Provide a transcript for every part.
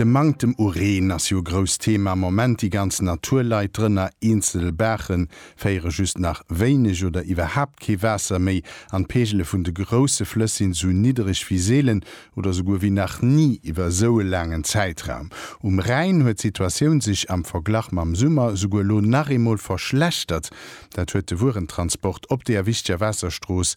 De Manktem u Reen ass jo e grousst Thema am Moment. Déi ganz Natur leit drënner, eenzel Baache féiere just nach wéineg oder iwwerhaapt kee Waasser méi an d'Peegele vun de grousse Flëss sinn esou niddereg wéi seelen oder souguer wéi nach ni iwwer esou e laangen Zäitraum. Um Rhäin huet d'Situatioun sech am Verglach mam Summer esouguer elo nach eemol verschlechtert. Dat huet de Wuerentransport op deeër wichteger Waasserstrooss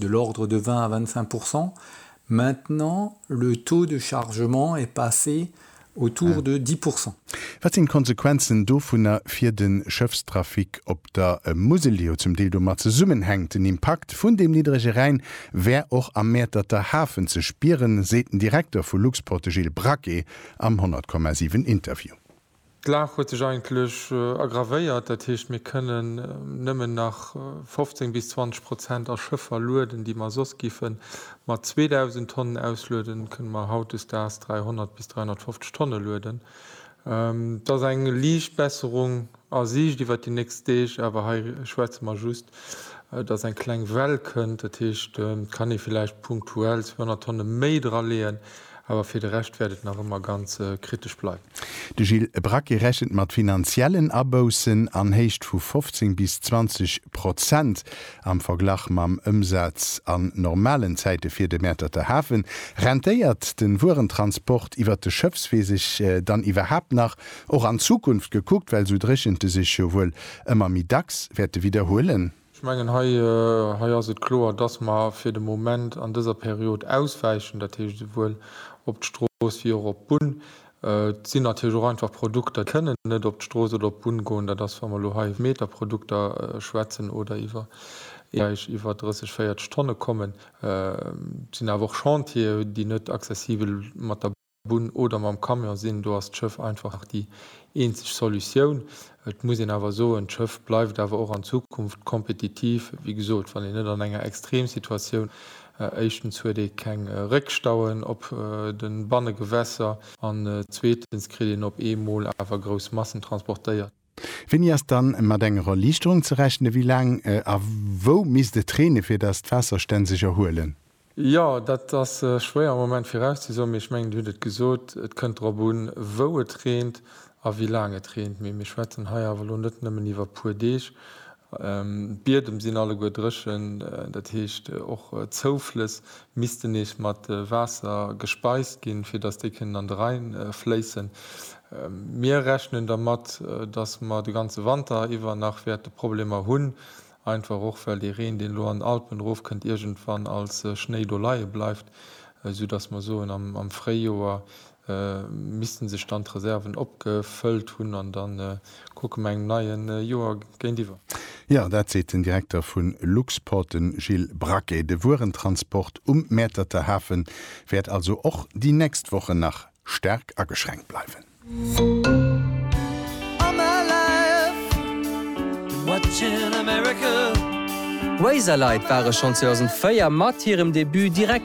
de l'ordre de 20 à 25 pourcents, maintenant le taux de chargement est passé autour de 10 pourcents. Wat sinn d'Konsequenzen dovunner fir de Schëffstrafic op der Musel, déi jo zum Deel domat zesummenhänkt? Den Impakt vun deem niddrege Rhäin wär och am Mäerterter Hafen ze spieren, seet den Direkter vu Luxport, de Gilles Braquet am 100,7 Interview. D'Lag huet sech eigentlech aggravéiert, dat heescht mir kënnen nëmmen nach 15 bis 20 Prozent a Schëffer lueden, déi mer soss giffen mat 2.000 Tonnen auslueden, kënne mer hautdesdaags 300 bis 350 Tonne lueden. Et ass eng liicht Besserung a Siicht iwwert déi nächst Deeg, awer hei schwätze mer just, dass eng kleng Well kënnt, dat heescht et kann ee villäicht punktuell 200 Tonne méi draleeën. Awer fir de Rescht wäert et nach ëmmer ganz kritesch bleiwen. De Gilles Braquet rechent mat finanziellen Aboussen an Héicht vu 15 bis 20 Prozent am Verglach mam Ëmsaz an normalen Zäite fir de Mäerterter Hafen. Rentéiert de Wuerentransport iwwer de Schëffswee sech dann iwwerhaapt nach? Och an Zukunft gekuckt, well esou Dréchente sech jo wuel ëmmer méi dacks wäerte widderhuelen. Ech mengen, hei ass et kloer, dass mer fir de Moment an dëser Period auswäichen, dat heescht esouwuel op d'Strooss wéi och op d'Bunn. Et sinn natierlech och einfach Produkter, déi kënnen net op d'Strooss oder op d'Bunn goen. Dat ass, wa mer elo hei iwwer Meterprodukter schwätzen oder iwwer Beräich iwwer 30, 40 Tonne kommen. Et sinn awer och Chantiere, déi net accessibel mat der. Bunn oder mam Camion sinn, do ass d'Schëff einfach nach déi eenzeg Solutioun. Et muss een awer soen, d'Schëff bleift awer och an Zukunft kompetitiv. Wéi gesot, wann een net an enger Extremsituatioun, éischtens huet ee keng Réckstauen op de Bannegewässer an zweetens kritt een op eemol awer grouss Massen transportéiert. Wéini ass dann mat enger Erliichterung ze rechnen? Wéi laang a wou misst et reene fir dass d'Waasserstänn sech erhuelen? Jo, dat ass schwéier am Moment virauszesoen, mee ech mengen dir hutt et gesot, et kënnt drop un wou et reent a wéi laang et reent. Mee mir schwätzen hei awer elo net nëmmen iwwer e puer Deeg, D'Biedem sinn alleguer dréchen, dat heescht och d'Zouflëss missten nees mat Waasser gespeist ginn, fir datt déi kënnen an de Rhäin fléissen. Mir rechnen dermat, datt mer de ganze Wanter iwwer nach wäerte Problemer hunn, einfach och well dee Reen, deen elo an den Alpen erofkënnt, iergendwann als Schnéi do leie bleift, soudatt mer soen, am Fréijoer missten sech dann d'Reserven opgefëllt hunn an dann kucke mer engem neie Joer géintiwwer. Jo, dat seet den Direkter vu Luxport, de Gilles Braquet. De Wuerentransport um Mäerterter Hafe wäert also och déi nächst Wochen nach staark ageschränkt bleiwen.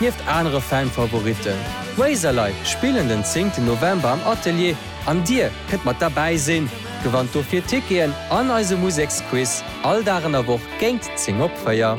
Nieft anere Fan-Favoritten, Razorlight spillen den 10 November am Atelier an dir kënnt mat derbäi sinn. Gewannt dofir Ticketen an eise Museksquiz all Dag an der Woch géint 10 op 4.